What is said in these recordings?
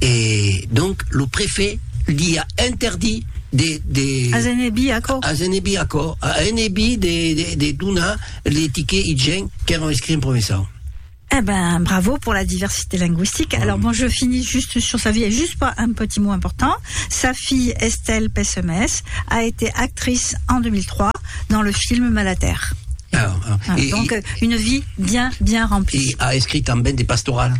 E donc lo prefet li a interdit de, de... As enebir aquò. As enebir aquò, a enebir de, de, de donar les tickets IGEN qu'èran escrits en provençau. Eh ben, bravo pour la diversité linguistique. Bravo. Alors bon, je finis juste sur sa vie, et juste pas un petit mot important. Sa fille, Estelle Pessemès, a été actrice en 2003 dans le film Malater. Ah, ah. Ah, et, donc, et, une vie bien, bien remplie. Et a écrit también des pastorales.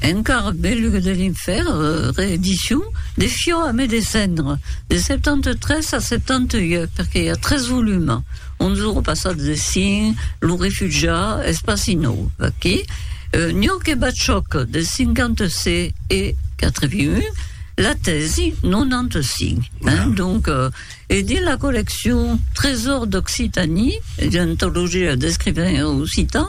Encara belug de l'infèrn, reedicion, de Fiò a me descendre, de 73 a 78, perque i a tres volums, un de lo passat de Syn, Lo refugiat, espaci nòu, aquí, euh, Nioc e Batchòc, de 56 e 81, la tèsi, 95. Hein? Donc, euh, e dins la colleccion Trésors d'Occitanie, d'antologia d'escrivains occitans,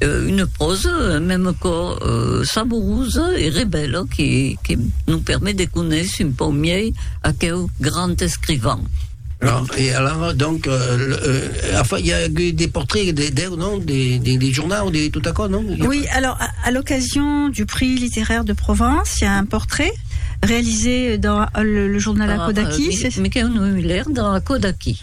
Une pròsa mème quò saborosa e rebèla que que nos permet de conéisser un pauc miei aqueu grand escrivan. Alors, e alara, donc, a fa, i a agut des portraits de deu, non? Des, des, des journaux, de tot aquò, non? Oui, alors, à, à l'occasion du prix littéraire de Provence, il y a un portrait réalisé dans le, le journal Akodaki. Ah, mais, mais qu'un, il a l'air dans Akodaki.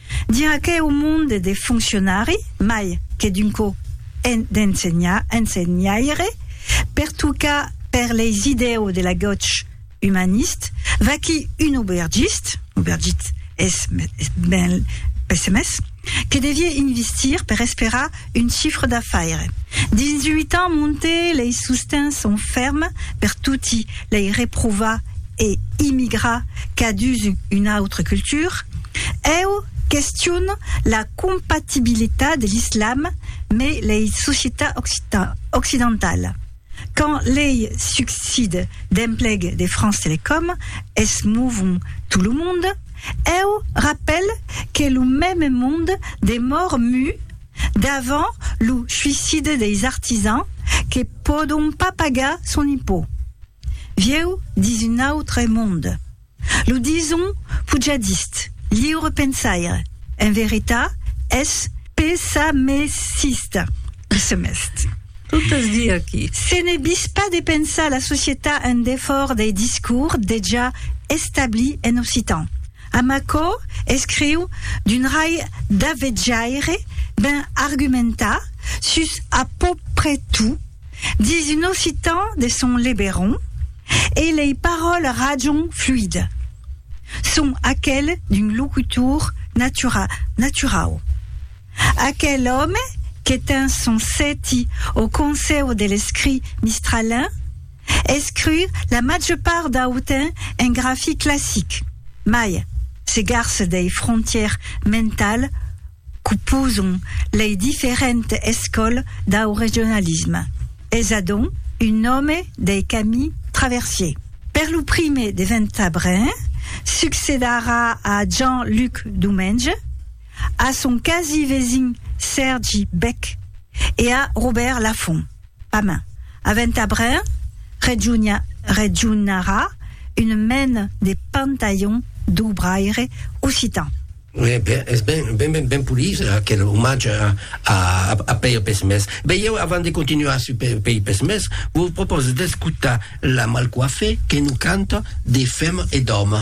Dir aqueu monde de foncionari, mai que d'un co d'ensenhaire, pertucar per leis idèu de la goch umanist, vaquí un aubergist, aubergit es ben pessemés, que devié investir per esperar Un chifre d'afaire. Dins uit ans monte lei sostens son ferm per toti lei reprovar e immigrar qu'a dus una autre culture. Eu question la compatibilitat de l'islam me lei societat occidentala. Quand lei succide d'empleg de France Telecom es movon tout lo monde, eu rapèl que lo mème monde demor mu davant lo suicide deis artisans que pòdon pas pagar son impôt. Vieu dins un autre monde. Lo dison pujadist, liure pensaire, en veritat, es pesamesista, lo semest. Tot es dit aquí. Se ne vis pas de pensar la societat en defòrt dei discours dejà establits en occitan. Amb aquò escriu d'un rai d'avetjaire ben argumentat sus a pòuprè tot. Dis un occitan de son leberon e lei paròles rajon fluid. Son aquel d'un locutor natura, naturau. Aquel òme que ten son sèti au Consèu de l'Escrit Mistralin, escriu la màger part dau temps en grafi classic, mai se garce dei frontièrs mentals qu'oposon lei diferentes escòles dau regionalisme, es adonc un nòme dei Camille Traversier. Per lo prime de Ventabren succedarà a Jean Luc Domenge, a son quasi vesin Sèrgi Bech e a Robèrt Lafont. Pamèn, a Ventabren regionarà un mèn de pantalhon d'obraire occitan. Ue ben, es ben, ben, ben, ben polit aquel omatge a, a, a Pèir Pesmés. Ben, ieu, avant de continuar sur Pè, Pèir Pesmés, vos propòse d'escotar la Malcoifée que nos canta de Fèm e d'Òme.